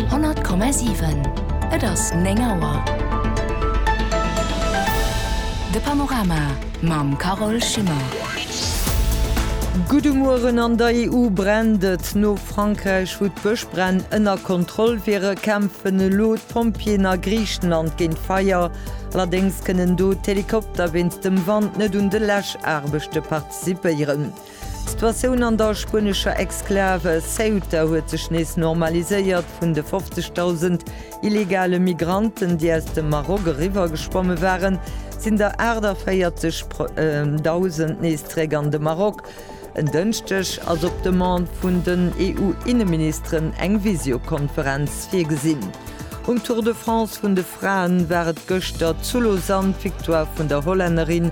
100,7 Et ass 9 Auer. De Panorama mam Carole Schimmer. Gudde Mueren. An der EU brennt et. No Frankräich, wou d'Bëschbränn ënner Kontroll wiere, kämpfen elo d'Pompjeeën a Griichenland géint d'Feier. Allerdéngs kënnen do d'Helikopter wéinst dem Wand net un de Läschaarbechte participéieren. D'Situatioun an der spuenescher Exklave Ceuta huet sech nees normaliséiert. Vun de 50.000 illegale Migranten, déi aus dem Maroc eriwwer geschwomme waren, sinn der 48.000 nees zeréck an de Maroc. En Dënschdeg ass op Demande vun den EU-Inneministeren eng Visiokonferenz virgesinn. Um Tour de France vun de Fraen war et gëschter zu Lausanne d'Victoire vun der Hollännerin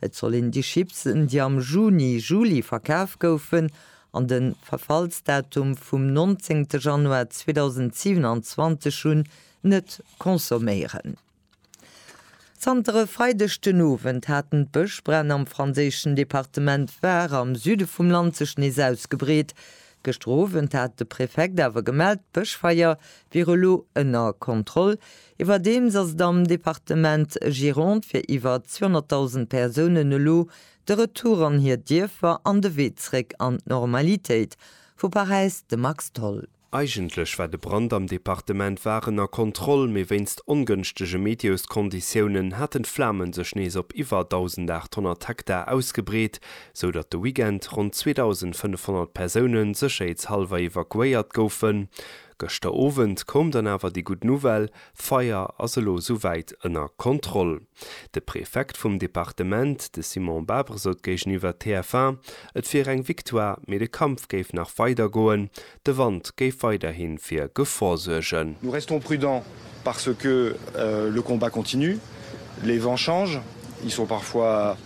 Et soll een déi Chipsen, déi am Juni, Juli verkaf goufen an de Verfallsdatum vum 19 Januar 2027 hunn, net consomméieren. Zanter e Freideg den Owend haten d'Bëschbränn am franséischen Departement Var am Süde vum Land sech nees ausgebreet. Gëschter Owend hat de Prefekt awer gemellt, d'Bëschfeier wier elo ënner Kontroll. Iwwerdeems ass et am Departement Gironde fir iwwer 200.000 Persounen elo de Retour an hir Dierfer an de Wee zréck an d'Normalitéit. Vu Paräis de Max Tholl. Eigentlech war de Brand am Departement Var ënner Kontroll, mee wéinst ongënschtege Meteoskonditiounen haten d'Flame sech nees op iwwer 1.800 Hektar ausgebreet, sou datt de Weekend ronn 2.500 Persoune sécherheetshallwer evakuéiert goufen. Gëschter Owend koum dann awer déi gutt Nouvelle, d'Feier ass elo sou wäit ënner Kontroll. De Prefekt vum Departement, de Simon Babre sot géigeniwwer TF1, et wier eng Victoire, mee de Kampf géif nach weider goen, de Wand géif weiderhi fir Gefor suergen. Nous restons prudents parce que le combat continue, les vents changent, ils sont parfois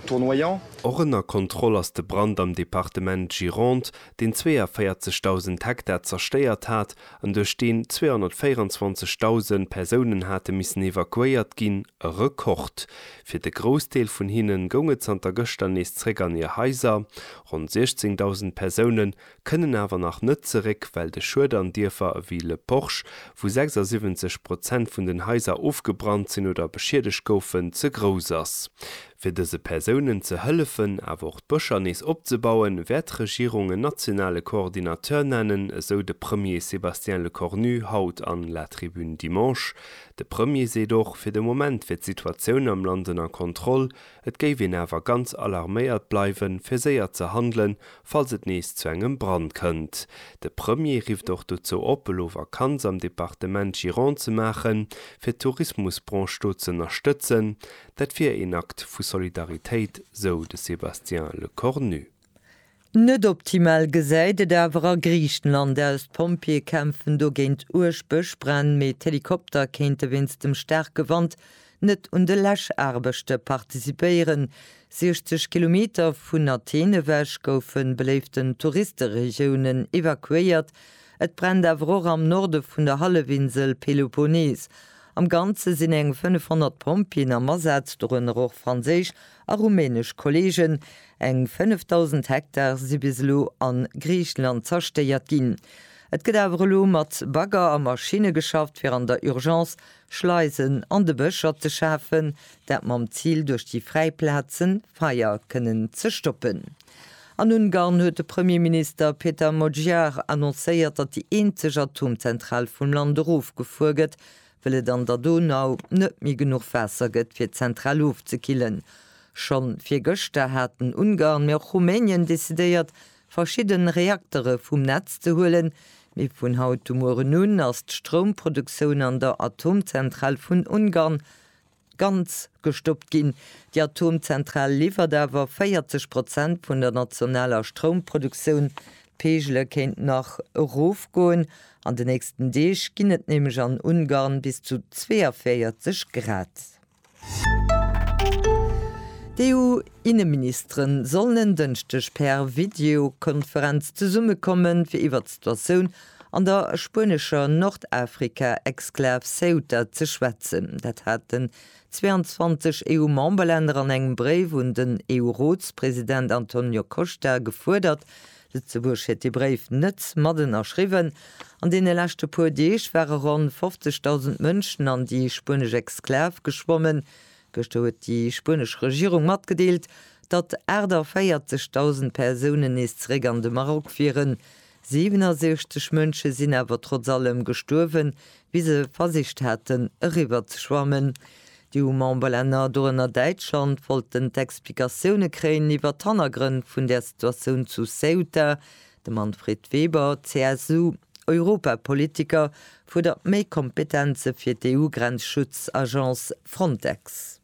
tournoyants. Och ënner Kontroll ass de Brand am Departement Gironde, deen 42.000 Hektar zerstéiert hat an duerch deen 224.000 Persounen hate missen evakuéiert ginn, e Rekord. Fir de Groussdeel vun hinne goung et zanter gëschter nees zeréck an hir Haiser. Ronn 16.000 Persoune kënnen awer nach net zeréck, well de Schued an Dierfer ewéi Le Porche, wou 76 Prozent vun den Haiser ofgebrannt sinn oder beschiedegt goufen, ze grouss ass. Fir dëse Persounen ze hëllefen, awer och d'Bëscher nees opzebauen, wäert d'Regierung en nationale Coordinateur nennen, esou de Premier Sébastien Lecornu haut an La Tribune Dimanche. De Premier seet och, fir de Moment wier d'Situatioun am Land ënner Kontroll, et géif een awer ganz alarméiert bleiwen, fir séier ze handelen, falls et nees zu engem Brand kënnt. De Premier rifft och dozou op, elo Vakanz am Departement Gironde ze maachen, fir d'Tourismusbranche do z'ënnerstëtzen. Dat wier een Akt vu Solidaritéit, sou de Sébastien Lecornu. Net optimal gesäit et awer a Griichenland aus. D'Pompjeeë kämpfen do géint uerg Bëschbränn, mee d'Helikopter kéinte wéinst dem staarke Wand net un de Läschaarbechte participéieren. 60 Kilometer vun Athen ewech goufe beléiften Touristeregiounen evakuéiert. Et brennt awer och am Norde vun der Hallefinsel Peloponnes. Am Ganze sinn eng 500 Pompjeeën am Asaz, dorënner och franséisch a rumänesch Kolleegen. Eng 5.000 Hektar si bis elo a Griichenland zerstéiert ginn. Et gëtt awer elo mat Bagger a Maschinne geschafft, fir an der Urgence Schleisen an de Bëscher ze schafen, dat mam Zil, duerch déi fräi Plaze Feier kënnen ze stoppen. An Ungarn huet de Premierminister Peter Magyar annoncéiert, datt déi eenzeg Atomzentral vum Land erofgefuer gëtt, well et an der Donau net méi genuch Waasser gëtt, fir d'Zentral ofzekillen. Schonn virgëschter haten Ungarn, mee och Rumänien decidéiert, verschidden Reaktere vum Netz ze huelen. Mee vun haut u mueren un ass d'Stroumproduktioun an der Atomzentral vun Ungarn. ganz gestoppt ginn. Déi Atomzentral liwwert awer 40 Prozent vun der nationaler Stroumproduktioun. D'Peegele kéinten nach erofgoen. An de nächsten Deeg ginn et nämlech an Ungarn bis zu 42 Grad. D'EU-Inneministere sollen en Dënschdeg per Videokonferenz zesummekommen, fir iwwert d'Situatioun An der spuenescher Nordafrika-Exklav Ceuta ze schwätzen. Dat haten 22 EU-Memberlänner an engem Bréif un den EU-Rotspresident Antonio Costa gefuerdert. Lëtzebuerg huet dee Bréif net mat ënnerschriwwen. An deene leschte puer Deeg ware ronn 50.000 Mënschen an déi spuenesch Exklav geschwommen. Gëschter huet déi spuenesch Regierung matgedeelt, datt 48.000 Persounen nees zeréck an de Maroc wieren. 67 Mënsche sinn awer trotz allem gestuerwen, wéi se versicht haten, eriwwer ze schwammen. Déi EU-Memberlänner, dorënner Däitschland, wollten d'Explikatioune kréien iwwer d'Hannergrënn vun där Situatioun zu Ceuta. De Manfred Weber, CSU-Europapolitiker, fuerdert méi Kompetenze fir d'EU-Grenzschutz-Agence Frontex.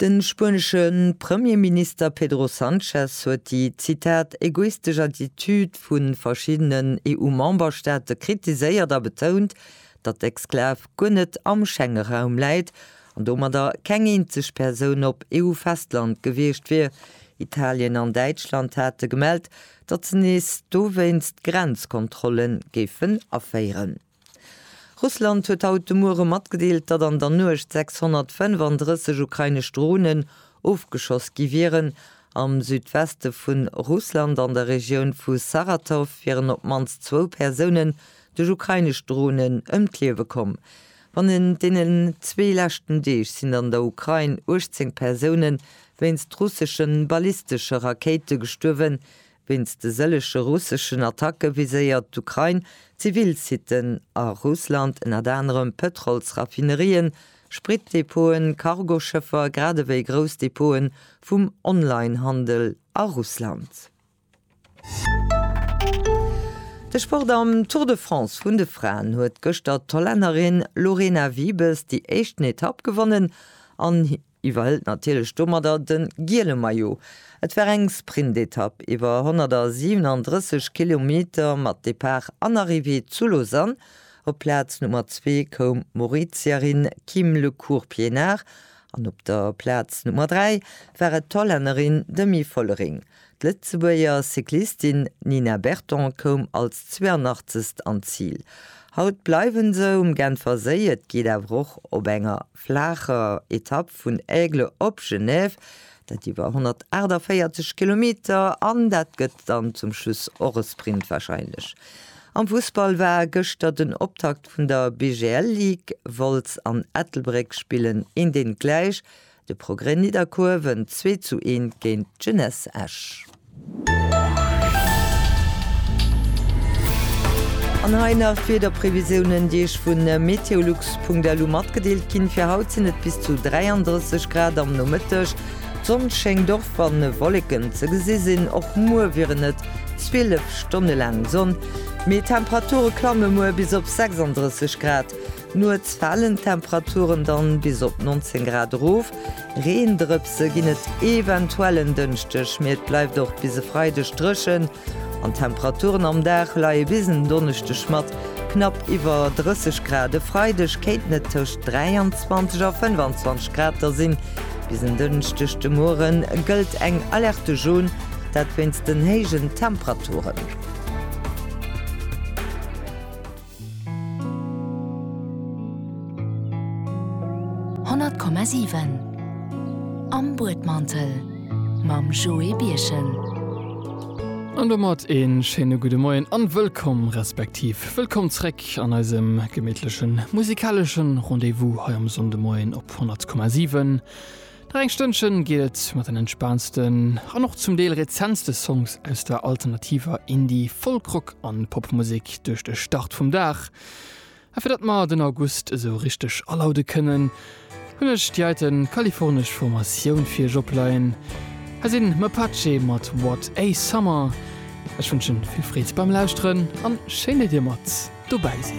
De spuenesche Premierminister Pedro Sanchez huet déi, Zitat, egoistesch Attitude vu verschiddenen EU-Memberstaate kritiséiert a betount, datt d'Exklav guer net am Schengeraum läit an domadder keng eenzeg Persoun op EU-Festland gewiescht wier. Italien an Däitschland hate gemellt, datt se nees dowéinst Grenzkontrolle géifen aféieren. Russland huet haut de Muere matgedeelt, datt an der Nuecht 635 ukrainesch Dronen ofgeschoss gi wieren. Am Südweste vu Russland, an der Regioun vu Saratow, wieren op d'mannst zwou Persounen duerch ukrainesch Dronen ëm d'Liewe komm. Bannent deenen zwee leschten Deeg sinn an der Ukrain 18 Persoune wéinst russeschen ballistesche Rakéite gestuerwen, Wéinst de sëllege russeschen Attacke viséiert d'Ukrain zivil Siten a Russland, ënnert anerem Pëtrolsraffinerien, Spritdepoten, Cargoschëffer, grad ewéi grouss Depoten vum Online-Handel a Russland. De Sport am Tour de France vun de Fraen huet gëschter d'Hollännerin Lorena Wiebes déi éischten Etapp gewonnen an. iwwerhëlt natierlech domadder de giele Maillot. Et war eng Sprintetapp iwwer 137 Kilometer mat Depart an Arrivée zu Lausanne. Op d'Plaz Nummer zwee koum d'Mauritierin Kim Le Court Pienaar an op der Plaz Nummer dräi war et d'Hollännerin Demi Vollering. D'Lëtzebuerger Cyclistin Nina Berton koum als 82. an d'Zil. Haut bleiwe se um Genferséi, et geet awer och op enger. flaacher Etapp vun Aigle op Genève, dat iwwer 148 Kilometer, an dat gëtt dann zum Schluss och e Sprint wahrscheinlech. Am Fussball war gëschter den Optakt vun der BGL Ligue, Wolz an Ettelbréck spillen een deen gläich, de Progrès Nidderkuer wënnt 2 zu 1 géint d'Jeunesse Esch. An hei nach d'Wiederprevisiounen, déi Iech vu meteolux.lu matgedeelt ginn. Fir haut sinn et bis zu 33 Grad am Nomëtteg. D'Sonn schéngt och wann Wolleken ze gesi sinn. Och muer wieren et 12 Stonne laang Sonn, mee d'Temperature klamme muer bis op 36 Grad. Nuets falen d'Temperaturen dann bis op 19 Grad erof. Reendrëpse ginn et eventuell en Dënschdeg, mee et bleift och bis e Freideg drëchen an d'Temperaturen am Dag leie bis en Donneschdeg mat knapp iwwer 30 Grad. E Freideg kéinten et tëscht 23 a 25 Grad da sinn. Bis en Dënschdeg de Muere gëllt eng Alerte Jaune, dat wéinst den héijen Temperaturen. Honnert Komma siwen Am Buedmantel mam Joé Birchen. An domat ee schéine gudde Moien a wëllkomm, respektiv wëllkomm zréck an eisem gemitlechen musikaleschen Rendez-vous hei am Sonndemoien op 100,7. Nach eng Stënnchen geet et mat den entspaantsten an och zum Deel rezentste Songs aus der alternativer Indie-, Folk-, Rock an Popmusek duerch de Start vum Dag. A fir datt mer den August esou richteg alaude kënnen, hunn ech déi heite kalifornesch Formatioun fir iech opleien. Hei sinn Mapache mat What A Summer. Ech wënschen vill Freed beim Lauschteren an schéin datt dir mat dobäi sidd.